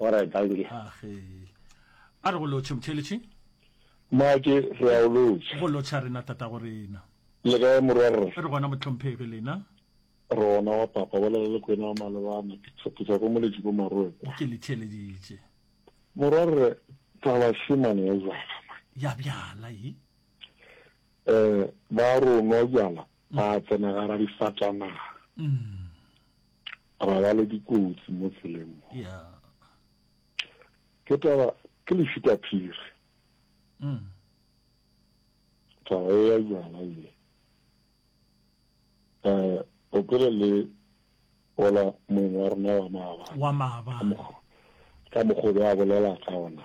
Alright, dankie. Age. A re go lotšhe motheeletši. Mmake, re a o lotšha. Go lotšha rena tatago rena. Le kae morwa rre? Re gona mohlomphegi lena. Rona wa papa bolela le kwena wa malebana ke tshepisa ko moletši ko maroekwa. Ke le theeleditše. Morwa rre taba shemane ya jala. Ya bjala yi. Eh ba ronwa jala Ra tsena gara difatanaga, ra ba le dikotsi mo tseleng mo. Ke taba, ke lešitaphiri. Taba e ya jwala ye. Eh, o pele le ola mong wa rona wa maabane. Wa maabane. Ka mokgobe a bolela ka ona.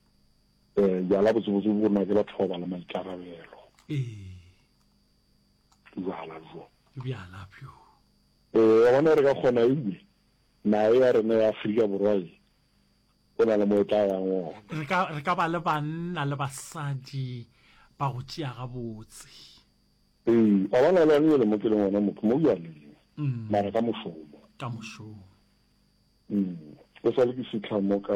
um jala botsebotse bo na ke batho ba ba le maikarabelo jala jo bjala bjo um wa bona re ka kgona ebe nae ya rena ya aforika borwa e o na le mo e tla yang ona re ka ba le banna le basadi ba go tšea gabotse ee wa bona le one ele mo ke leng ona mo mo bjaleng mm. mara ka mošomo ka mošomo mm o sa le ke fitlha mo ka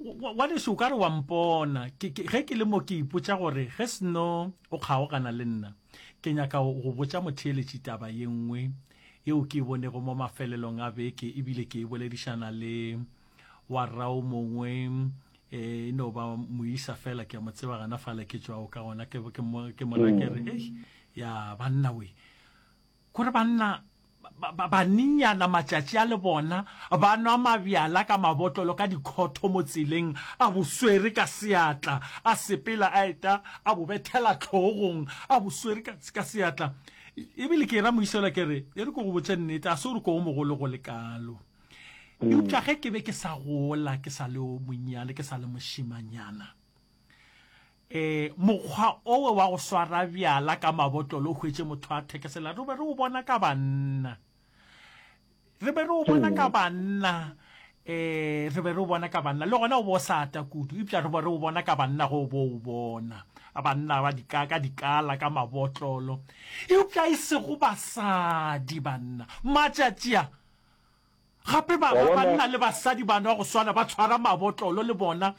wa leso o ka re wa mpona ge ke le mo ke ipotsa gore ge seno o kgaogana le nna ke nyaka go botsa motheeletši taba ye nngwe yeo ke e bonego mo mafelelong a beke ebile ke e boledišana le wa rao mongwe e no ba moisa fela ke a mo tseba gana fale ke tswa o ka gona ke mona ke re ya banna we Gore banna ba baninyana matšatši a le bona ba nwa mabjala ka mabotlolo ka dikhotho mo tseleng, a bo swere ka seatla, a sepela a eta a bo bethela hlogong a bo swere ka, ka seatla. E bile ke era moisela ke re, e re ke go botše nnete, ga se gore ke o mogolo go le kalo. Eupša ge ke be ke sa gola ke sa le o monnyane, ke sa le mošemanyana, Ee, mokgwa owe wa go swara bjala ka mabotlolo o hwetše motho a thekesela. Re be re o bona ka banna. Re be re o bona ka banna. Ee, re be re o bona ka banna. Le gona o bo o sa ata kudu. Eupša re be re o bona ka banna ge o bo o bona. Banna ba dika, ka dikala, ka mabotlolo. Eupša e sego basadi, banna. Matšatši a. Gape ba, ba banna le basadi ba nwa go swana, ba tshwara mabotlolo le bona.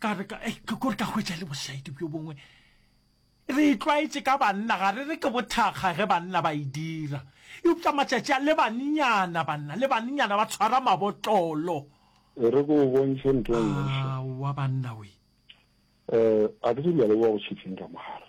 Ka re, ka, eh, kore ka hwetša le bošaedi bjo bongwe. Re itlwaetše ka banna, ga re re ke bothakga ge banna ba e dira. Eupša matšatši a, le bannyana banna, le bannyana ba tshwara mabotlolo. E re ke go bontšhe ntho e nngwe hle. Aowa banna we. Eh, ga ke tsebe le a leboga go tšhetseng ka mogare.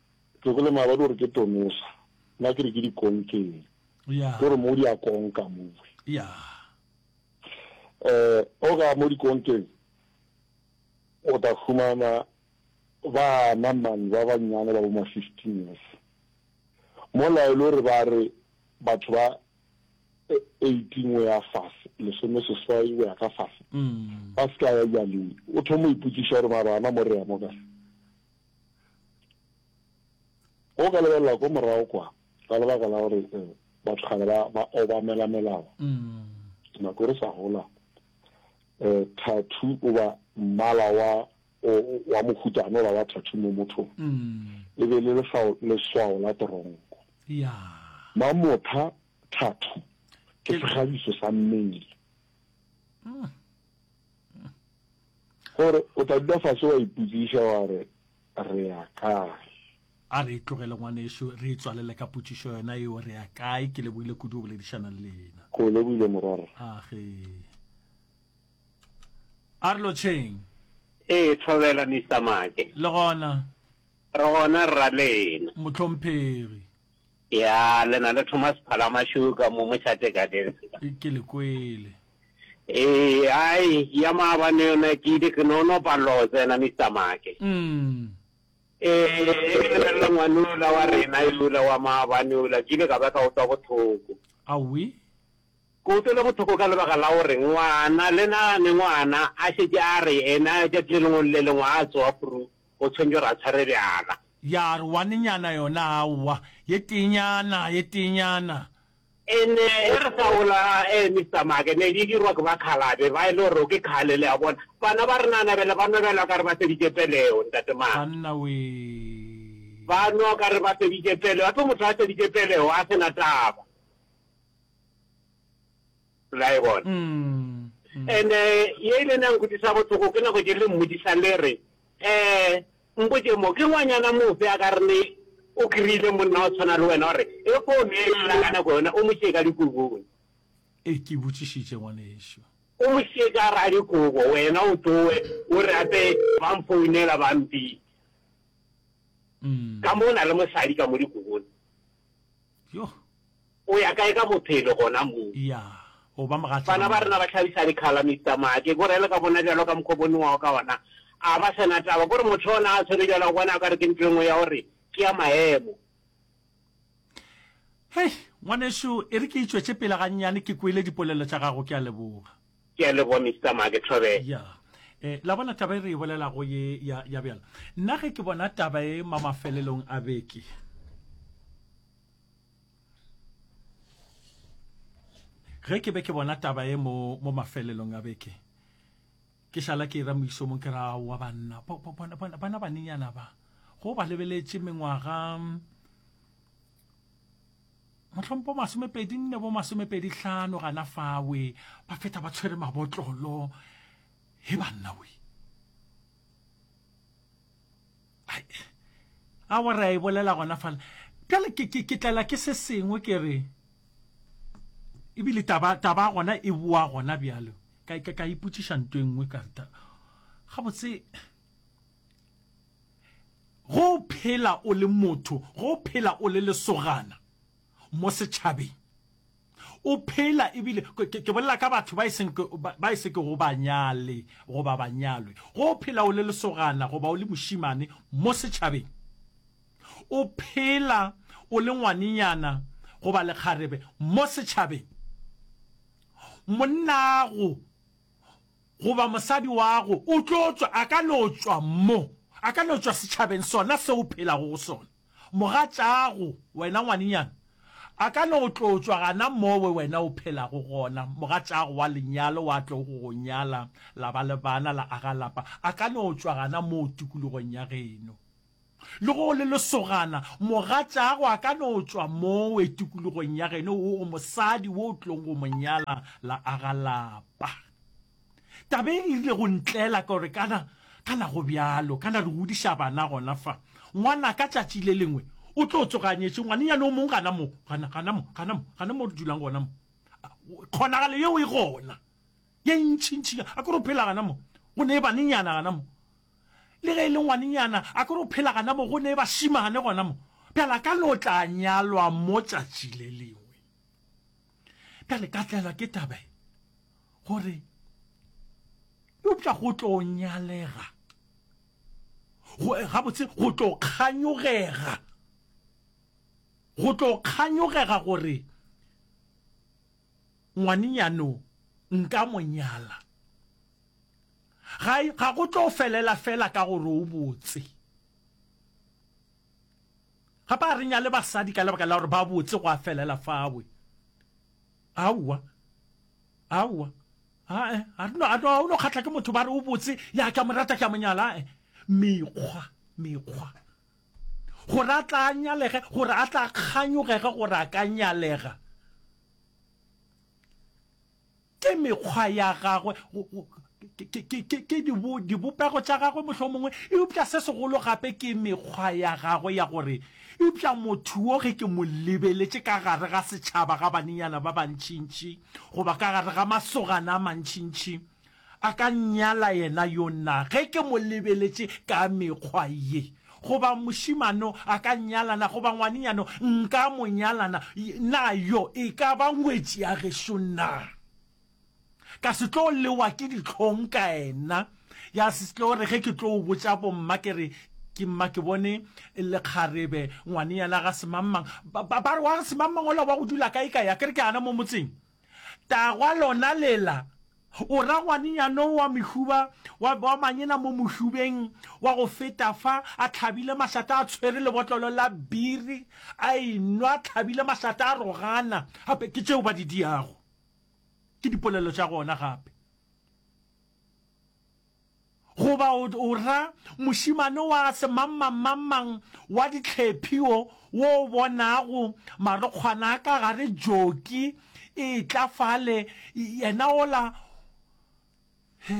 Tlogele maabadi o re ke tonosa, nna ke re ke di konkeng. Yeah. Ke gore mo di a konka mowe. Yeah. Eh, o ka mo di konkeng o ta fumana bana man ba banyane ba bo ma 15 years. Mo laelo re ba re batho ba 18 o ya fase, lesome seswai o ya ka fase. Mm. Ba ska ya jaleng. O thomo iputsiša gore mara ana mo re ya mo ka. Go ka lebelela ko morago kwa ka lebaka la gore eh, batho kgale ba ba obamela melao mm. nako re sa gola eh thathu o ba mmala wa wa mohutano la wa thathu mo motho mm. e be le leswao leswao la toronko ya mamotha thathu ke segabiso sa mmele mm. Gore o tla dula fase wa ipotsiša wa re, Re ya kae? A re e tlogele ngwanešu, re itswalele ka potšišo yona eo, Re ya kae? Ke lebohile kudu go boledišana le lena. Ke o lebohile morwarra. Age. A re lotšheng. Ee, Thobela, Mister Maake. Le gona. Re gona, Rralena. Mohlomphegi. Ya, le na le Thomas Phalamašuka mo mošate ka desi. E ke le kwele. E, ai, ya maabane yona ke ile ke no no paloh tsena Mister Make. Mm. E, e ke lebelela ngwane ola wa rena yola wa maabane ola ke ile ka ba ka otwa bothoko. Awi. Ke otwele bothoko ka lebaka la gore ngwana le na ne ngwana a šetše a re ena tšatši le lengwe le lengwe a tsoa pru go tshwentšwe ra tshwere bjala. Ya re wanenyana yona, Aowa, ye teenyana, ye teenyana. Ene ge re sa gola, ee, Mister Maake, ne di dirwa ke bakhalabe, ba e le gore ke khale, le a bona. Bana ba renana bjale ba nwa bjalo ka re ba feditše peleo, Ntate Maake. Banna wee! Ba nwa ka re ba feditše peleo, gape motho a feditše peleo a se na taba. La e bona? And ye ile na nkutisa bohloko ke nako ke le mmodisa le re, Eh, mpotše mo, ke ngwanyana mofe a ka re o kry-ile monna wa tshwana le wena gore e fo ne e lla ka nako yona o mo šie ka dikobong? E, ke botšišitše, ngwanešu. O mo šie ka gare ga dikobo, wena o tloe o re gape ba mfounela ba mpitša. Ka mo o na le mosadi ka mo dikobong. Yoh. O ya kae ka bophelo gona moo? Ya, o ba mogatša ga Bana ba rena ba hlabisa dikhala, Mister Ma. Ke ko rele ka bona bjalo ka mokgo bo newago ka ona. A ba sena taba. Kore motho ona a tshwere bjalo, o bona o ka re ke ntho e nngwe ya gore ke ya maemo. Hei, ngwanešu, e re ke itšwetše pele gannyane, ke kwele dipolelo tša gago. Ke a leboga. Ke a leboga, Mister Ma. Ke thobela. Ya. E, la bona taba e re e bolelago ye ya, ya bjalo. Nna ge ke bona taba e ma mafelelong a beke. ge ke be ke bona taba e mo mo mafelelong a beke ke šala ke ira moisomong ke ra wa banna bana banenyana ba go ba lebeletše mengwaga mohlompo masomepedi nne bo masomepedi hlano gana fawe ba feta ba tshwere mabotlolo he banna we a wa re a e bolela gona fala bjale ke tlela ke se sengwe ke re ebile taba taba gona e boa gona bjalo ka ka ka iputsiša nto e nngwe ka reta gabotse go phela o le motho go phela o le lesogana mo setšhabeng O phela, ebile ke, ke bolela ka batho ba e seng, ba e se kego banyale goba banyalwe. Go o phela o le lesogana goba o le mošimane mo setšhabeng. O phela o le ngwanenyana goba lekgarebe mo setšhabeng. Monnago Goba mosadi wago o tlo tšwa, a ka no tšwa mo, a ka no tšwa setšhabeng sona se o phelago go sona. Mogatšaago, wena ngwanenyana, a ka no tlo tšwa gana mo we wena o phelago gona, mogatšaago wa lenyalo wa tlo go go nyala, la ba le bana, la aga lapa, a ka no tšwa gana mo tikologong ya geno. Le ge o le lesogana, mogatšaago a ka no tšwa mowe tikologong ya geno wo go mosadi wo o tlong go mo nyala la aga lapa. Taba e e rile go ntlela ka gore kana, kana go bjalo, kana re godiša bana gona fa. Ngwana ka tšatši le lengwe o tlo tsoga a nyetše ngwanenyane o mong gana mo, gana, gana mo, gana mo, gana mo re dulang gona mo. Kgonagalo yeo e gona. Ye ntšintši, a ke re o phela gana mo? Go ne e banenyana gana mo? Le ge e le ngwanenyana, a ke re o phela gana mo? Go ne e bašimane gona mo? Bjale a ka no tla nyalwa mo tšatši le lengwe. Bjale ka tlelwa ke taba ye, gore eupša go tlo nyalega, gabotse go tlo kganyogega, go tlo kganyogega gore Ngwanenyano, nka mo nyala. Ga, ga go tlo felela fela ka gore o botse. Gape a re nyale basadi ka lebaka la gore ba botse go a felela fawe. Aowa. Aowa. Ae, a re no, a no, a no kgatla ke motho ba re o botse, ya ke a mo rata, ke a mo nyala. Ae, mekgwa, mekgwa. gore a tla a nyalege, gore a tla a kganyogege gore a ka nyalega. Ke mekgwa ya gagwe, ke dibopego tša gagwe mohlomongwe, eupša se segolo gape ke mekgwa ya gagwe ya gore eupša motho wo ge ke mo lebeletše ka gare ga setšhaba, ga banenyana ba bantšintši goba ka gare ga masogana a mantšintši, A ka nnyala yena yo na, ge ke mo lebeletše ka mekgwa ye? Goba mošemano a ka nnyala na, goba ngwanenyano nka mo nyala na? Na yo e ka ba ngwetši ya gešo na? Ka se tlo lewa ke dihlong ka yena. Ya se tlo re ge ke tlo o botša bomma ke re, Ke mma ke bone lekgarebe, ngwanenyana ga semangmang. Ba re, Wa ga semangmang ola wa go dula kae kae? A ke re ke ana mo motseng. Tagwa lona lela, o ra ngwanenyana o wa mohuba wa, wa manyena mo mohubeng wa go feta fa, a tlhabile mašata, a tshwere lebotlolo la biri, a e nwa, a tlhabile mašata, a rogana. Gape ke tšeo ba di diago, ke dipolelo tša gona gape. goba o, o ra mošemane wa semangmangmangmang wa ditlhephi o, wo o bonago marokgwana a ka gare, joki e etla fale, yena ola. He,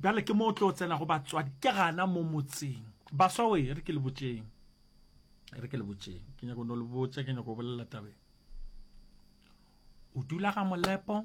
bjale ke mo o tlo tsenago batswadi, ke gana mo motseng. Baswa we, e re ke le botšeng, e re ke le botšeng, ke nyako no le botša, ke nyako bolela tabe. O dula ga Molepo?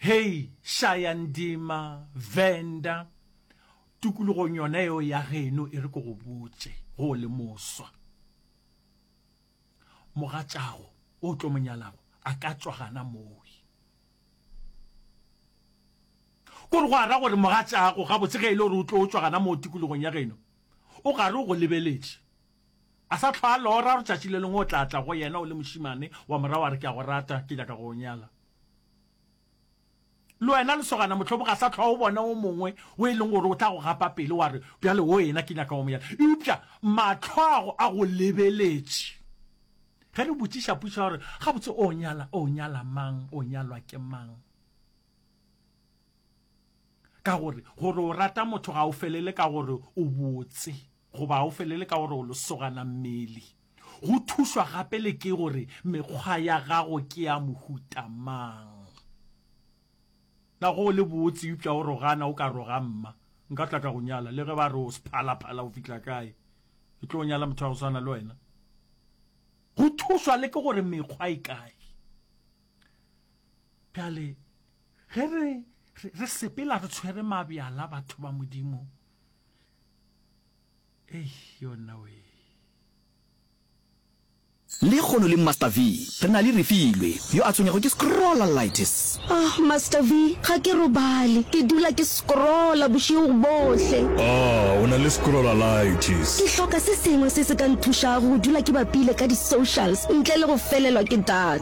Hei, Shayandima, Venda, tukulogong yona yeo ya geno e re ke go botše, go o le moswa. Mogatšago o tlo mo nyalago a ka tšwa gana moi. Kore go ara gore mogatšago gabotse ge e le gore o tlo tšwa gana moo tikologong ya geno, o gare o go lebeletše. A sa hlwa a lora gore tšatši le lengwe o tla tla go yena o le mošimane wa morago a re ke a go rata, ke nyaka go o nyala. Le wena lesogana, mohlomong ga sa hlwa o bona o mongwe o e leng gore o tla go gapa pele wa re, Bjale wo ena ke nyaka wa mo yala. Eupša matlhoago a go lebeletše. Ge re botšiša pušo ya gore, Gabotse o nyala, o nyala mang, o nyalwa ke mang? Ka gore, gore o rata motho ga o felele ka gore o botse. Goba o felele ka gore o losogana mmele. Go thušwa gape le ke gore mekgwa ya gago ke ya mohuta mang. Na ge o le botse eupša o rogana o ka roga mma, Nka tla ka go nyala le ge ba re o sephalaphala go fihla kae, ke tlo nyala motho wa go swana le wena. Go thušwa le ke gore mekgwa e kae. Bjale ge re re sepela re tshwere mabjala batho ba Modimo, Lehono le Master V, re na le Refilwe, yo a tshwenyago ke scrollalitis. Oh, Master V, ga ke robale, ke dula ke scrolla bošego bohle. Oh, o na le scrollalitis. Ke hloka se sengwe se se ka nthušago go dula ke bapile ka di-socials ntle le go felelwa ke data.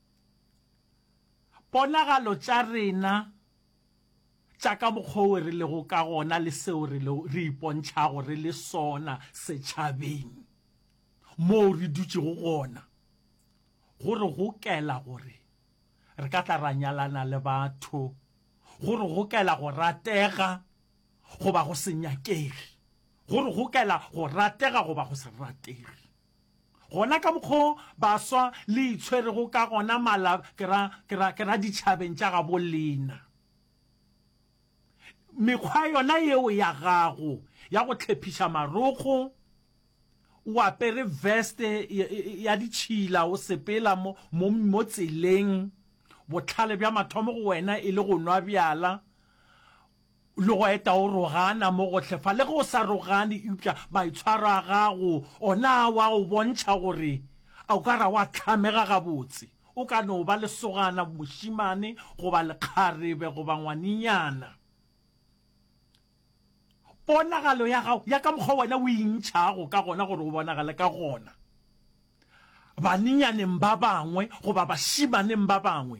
Ponagalo tša rena tša ka mokgwa wo re lego ka gona le seo re re ipontšhago re le sona setšhabeng moo re dutšego gona go re gokela gore re ka tla ra nyalana le batho, go re gokela go ratega goba go se nyakege, go re gokela go ratega goba go se ratege. Gona ka mokgo baswa le itshwerego ka gona mala ke ra, ke ra, ke ra ditšhabeng tša gabo lena. Mekgwa yona yeo ya gago ya go tlhephiša marokgo, o apere vest ya ditšhila o sepela mo, mo, mo tseleng, bohlale bja mathomo go wena e le go nwa bjala, Le go eta o rogana mo gohle fa, le ge o sa rogane, eupša maitshwaro a gago ona a wa go bontšha gore a o ka ra wa hlamega gabotse. O ka no ba lesogana, mošemane, goba lekgarebe, goba ngwanenyana. Ponagalo ya gago, ya ka mokgwa wena o intšhago ka gona gore o bonagale ka gona, banenyaneng ba bangwe goba bašemaneng ba bangwe,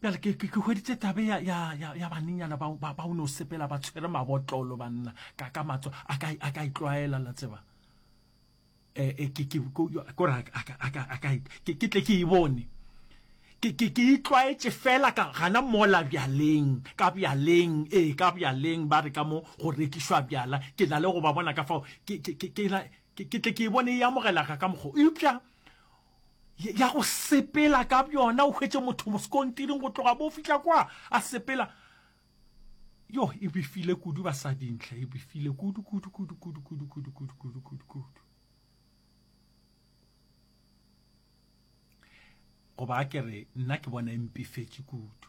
bjale ke ke hweditse tabe ya ya ya ya banenyana ba ba ba no sepela ba tshwere mabotlolo banna ka ka matso a ka a ka itlwaela la tseba eh, eh ke ke ko ra a ka a ka a ka ke ke tle ke e bone ke ke ke itlwaetse fela ka gana mola bjaleng ka bjaleng ee ka bjaleng ba re ka mo go rekišwa bjala ke na le go ba bona ka fao ke ke ke ke ke tle ke e bone e amogela ka ka mokgwa eupša ya go sepela ka bjona o hwetše motho moskontiring go tloga bo fihla kwa a sepela yo e bifile kudu basadintle e bifile kudu kudu kudu kudu kudu kudu kudu kudu kudu kudu goba a ke re nna ke bona e mpifetše kudu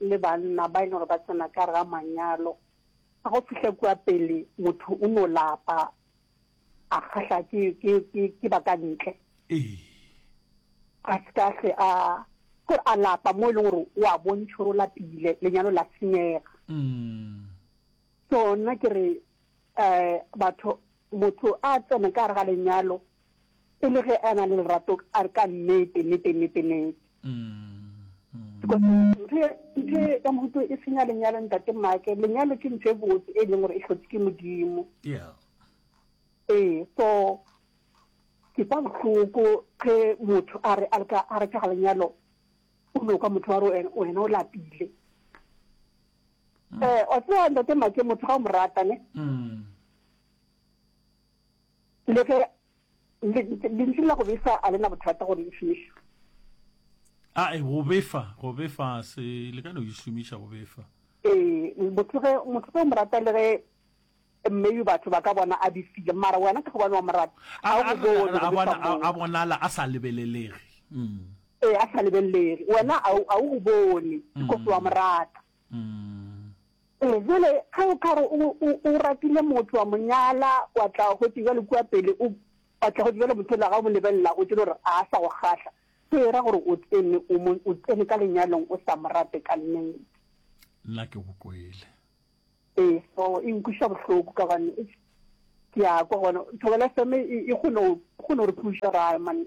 le banna ba e leng gore ba tsena ka ga manyalo ga go fihla kua pele motho o no lapa a kgahla ke ke ke ke ba ka ntle a se ka hle a gore a lapa mo e leng gore o a bontšha gore o lapile lenyalo la senyega so nna ke re um batho motho a tsene ka gare ga lenyalo e le ge a na le lerato a re ka nnete nnete nnete nnete ntho e ka mohuto e senya lenyalo ntate make lenyalo ke ntho e botse e leng gore e tlhotse ke modimo ee so ke kwa bohloko ge motho a re a re ka lenyalo o no kwa motho wa re wena o lapile um o tseba ntate make motho ga o mo rata ne mm. Le ge lentšu la go befa a le na bothata gore le šomišwe. A e go befa, go befa se le ka no e šomiša go befa. Ee, motho ge motho ge o mo rata le ge maybe batho ba ka bona a befile mara wena ka gobane wa mo rata a bonala a sa lebelelege mm. ee a sa lebelelege wena a o bone because wa mo rata Ee, bjale ge o ka re o, o, o ratile motho wa mo nyala, wa tla gotse bjale kua pele, o wa tla gotse bjale motho la ga o mo lebelela gotse le gore a sa go kgahla, se era gore o tsene, o mo, o tsene ka lenyalong o sa mo rate ka nnete. Nna ke go kwele. Ee, so e nkwiša bohloko ka gobane eish, ke a kwa gona thobela FM e, e kgone go, e kgone go re thuša ra man.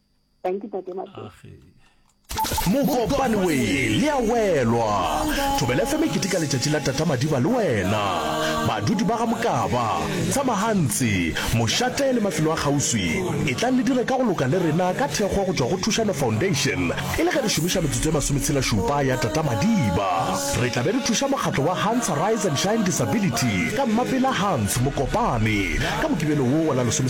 thank you tate mokopane we le a welwa thobela fm ke tika letšatši la tata madiba le wena badudi ba ga mokaba tshamagantsi mošate le mafelo a kgauswi e tlang le dire ka go loka le rena ka thekgo go tšwa go thušano foundation e le ge re šomiša metsotso e masometshelašupa ya tata madiba re tla be re thuša mokgatlo wa hans rise and shine disability ka mmapela hans mokopane ka mokibelo wo wa la lesome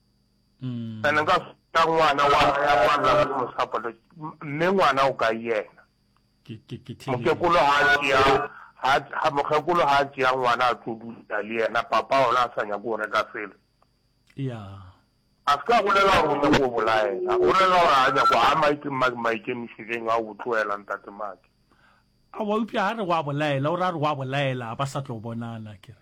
Mm. Ene nka ka ngwana wa ya kwalla mo mosapole mme ngwana o ka yena ke ke ke tlile mokekolo ha a tšea ha ha mokgekolo ha a tšea ngwana a tlo dula le yena papa ona a sa nyako go reka selo ya a se ka bolela gore o nyako go bolaela o rela gore a nyako a maike mma- maikemišeding a o tloela ntate make a wa upša ha re wa bolaela o ra re wa bolaela ba sa tlo bonana ke re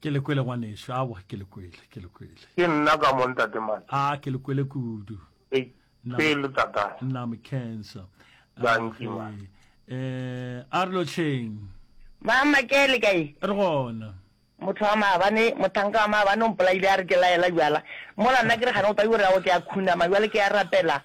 ke le kwele ngwaneso awa ke le kwele ke le kwele ke nna ka mo ntate mane a ke le kwele kudu ke le tata nna me cancer danki ma eh a re lo tsheng mama ke le kae re gona motho wa maabane mothanka wa maabane o mpolaile a re ke laela jwala mola nna ke re gane o tla jore yago ke ya khunama jwale ke ya rapela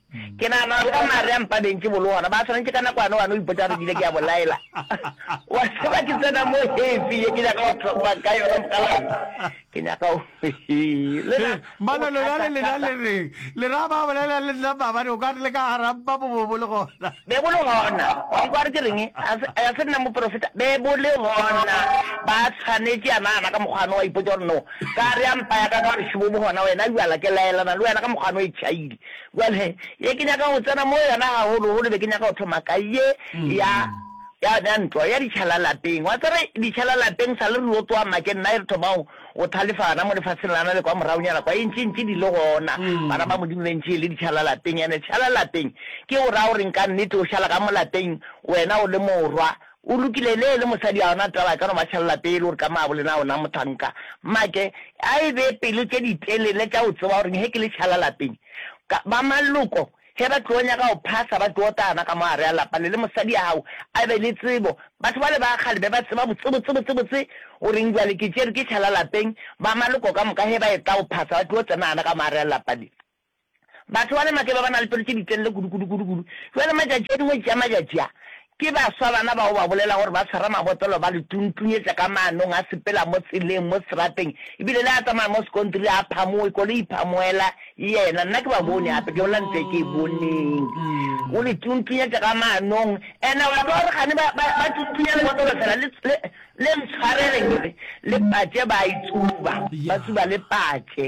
Ke nagana batho ba Maria mpa bentši bolo gona ba swanetše ka nakwane wa no ipotsa gore ke ile ke ya bolaela. Wa tseba ke tsena mo hefi ye ke nyaka go tlhopa ka yona mokgalabje. Ke nyaka go le na. Mana lona le lena le reng? Le ra ba bolela le nna maabane o ka re le ka gara mpa bobobo le gona. Be bo le gona. Wa nkwa re ke reng? A se nna moprofeta. Be bo le gona. Ba tshwanetše ya nagana ka mokgwano wa ipotsa gore no ka re ya mpa ya ka ka gore šebobo gona wena bjala ke laelana le wena ka mokgwano e tšhaile. Bjale, ye ke nyaka go tsena mo yona gagolo-golo, be ke nyaka go thoma ka ye ya, ya, ya ntwa, ya ditšhala lapeng. Wa tseba, ditšhala lapeng, sa le re yo tsoa makeng, nna e re thoma go, go thalefa gana mo lefaseng lana le kwa moragonyana kwa, e ntše, ntše di le gona, bana ba Modimo be ntše e le ditšhala lapeng. Ene tšhala lapeng, ke go raya gore nka nnete o šala ka mo lapeng, wena o le morwa, O lokile le le mosadi a ona taba ka no ba tšhelela pele gore ka maabo lena ona mohlanka make a e be pelo tše di telele tša go tseba gore he ke le tšhala lapeng ka ba maloko he ba tlo nyaka go phasa ba tlo otana ka mo gare a lapa le le mosadi a gago a be le tsebo batho ba le ba kgale be ba tseba botse botse botse botse goreng jwale ke tšere ke tšhala lapeng ba maloko ka moka he ba etla go phasa ba tlo tsena ana ka mo gare a lapa le Batho ba le makeba ba na le pelo tše di telele kudu, kudu, kudu, kudu. Bjale matšatši a dingwetši tša matšatši a, ke baswa bana bao ba bolelago gore ba tshwara mabotolo ba le tuntunyetša ka maanong a sepela mo tseleng, mo seterateng, e bile le a tsamaya mo sekontiri a phamoe, koloi e phamoela yena. Nna ke ba bone gape, ke bolela ntlo e ke e boneng. O le tuntunyetša ka maanong. And-e wa tseba gore kgane ba, ba, ba tuntunya lebotolo feela, le, le, le ntshwareleng, le patše ba e tsuba, ba tsuba le patše.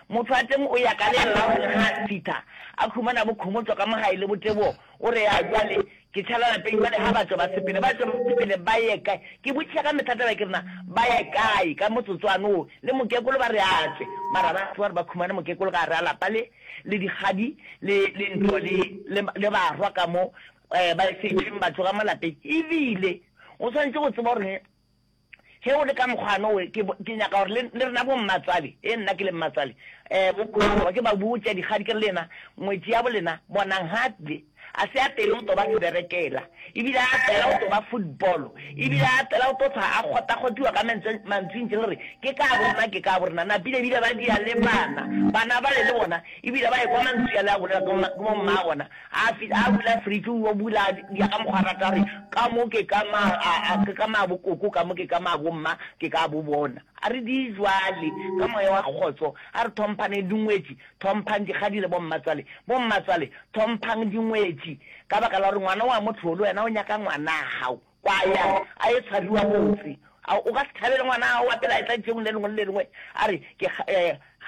Motho a tleng o ya ka le la gore ga a fitha, a khumana bo khomotšwa ka mo gae le bo tebogo, o re, Ya jwale, ke tšhala lapeng jwale, ga batšwa ba sepele. Batšwa ba sepele ba ye kae? Ke botšiša ka mehla taba ke re, Na ba ya kae ka motsotswana wo? Le mokekolo ba re a tšwe, mara ba tsoga gore ba khumane mokekolo ka gare ga lapa le, le dikgadi le, le ntlo le, le, le barwa ka mo, ba šetšeng ba tšwa ka mo lapeng. Ebile o swanetše go tseba gore Ge go le ka mokgwano we, ke, ke nyaka gore le, le rena bommatswale, e nna ke le mmatswale, eh, bo, bohlokwa ke ba botša dikgadi ke re le yena ngwetši yabo lena, bonang, Hartley a se apere go to ba seberekela, e bile a apera go to ba football, e bile a apera go to hlwa a kgotakgotiwa ka mantswe, mantswing tše le re ke ka bo rena, ke ka bo rena. Napile e bile ba dia le bana, bana bale le bona e bile ba ekwa mantswe ale a bolela ke, ke bo mmaa bona. A fihla a bula fridge, o yo bula dya ka mokgwa a rata a re, ka mo ke ka ma a a ke ka ma bo koko, ka mo ke ka ma bo mma, ke ka bo bona. A re di jwale, ka moya wa kgotso, a re thomphane dingwetši, thomphang dikgadi le bommatswale, bommatswale, thomphang dingwetši, ka baka la gore ngwana o a mo tlholo, wena o nyaka ngwanagau. Kwaya a e tshwariwa motse. A o ka se thabele ngwana'o wa pele a etla letšeong le lengwe le le lengwe a re, Ke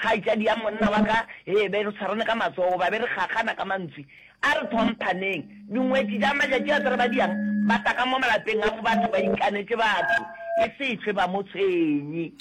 kgaetšadi ya monna wa ka, hee, be re tshwarane ka matsogo goba be re kgakgana ka mantswe. A re hlomphaneng. Dingwetši tša matšatši a tsarabadiang ba taka mo malapeng a mo batho ba ikanetše batho e se hlwe ba mo tshwenye.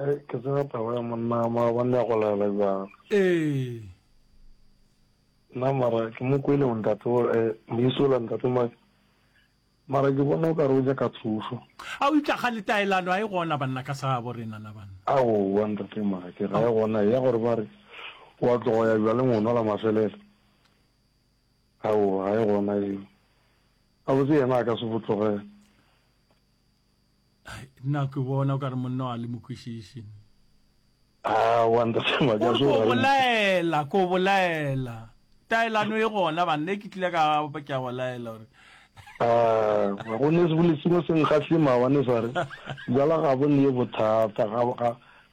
Ee, ke tseba taba ya monna maabane ya go laela bjalo. Ee. Nna mara ke mo kwele o ntate o eh, moisola ntate ma mara ke bona o ka re o ja ka thušo. A o itla ga letaelano a e gona banna ka sa bo rena na banna. A o wa ntate mara ke ra e gona ya gore ba re wa tlogo ya bjale ngwana la mafelelo. A o ga e gona eo. A botse yena a ka se botlogela. nna ke bona o ka re monna wa le mokwešiši ah, ko bolaela ko bolaela taelano e gona banna e ke tlile ka ke a go laela gore ah, ga go ne sebole sengwe se nkgahle mawane sa re jala ga bo ne bothata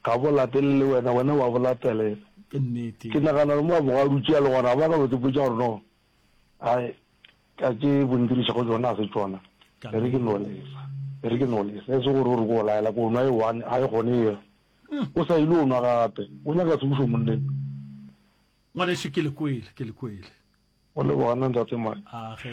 ga bo latelele wena wena wa bo latelela ke nagana le mo a boga dutše ya le gona ba ka botse potsa gore no Ai, ka tše bo ndiriša go tšona ga se tšona. E re ke no lesa. E re ke no lesa. E se gore o re ko laela ko nwa e one, ga e kgone e re. O sa ile o nwa gape. O nyaka tsebišo monneng. Ngwanešu ke le kwele, ke le kwele. O le gona ntate Mike. A ge.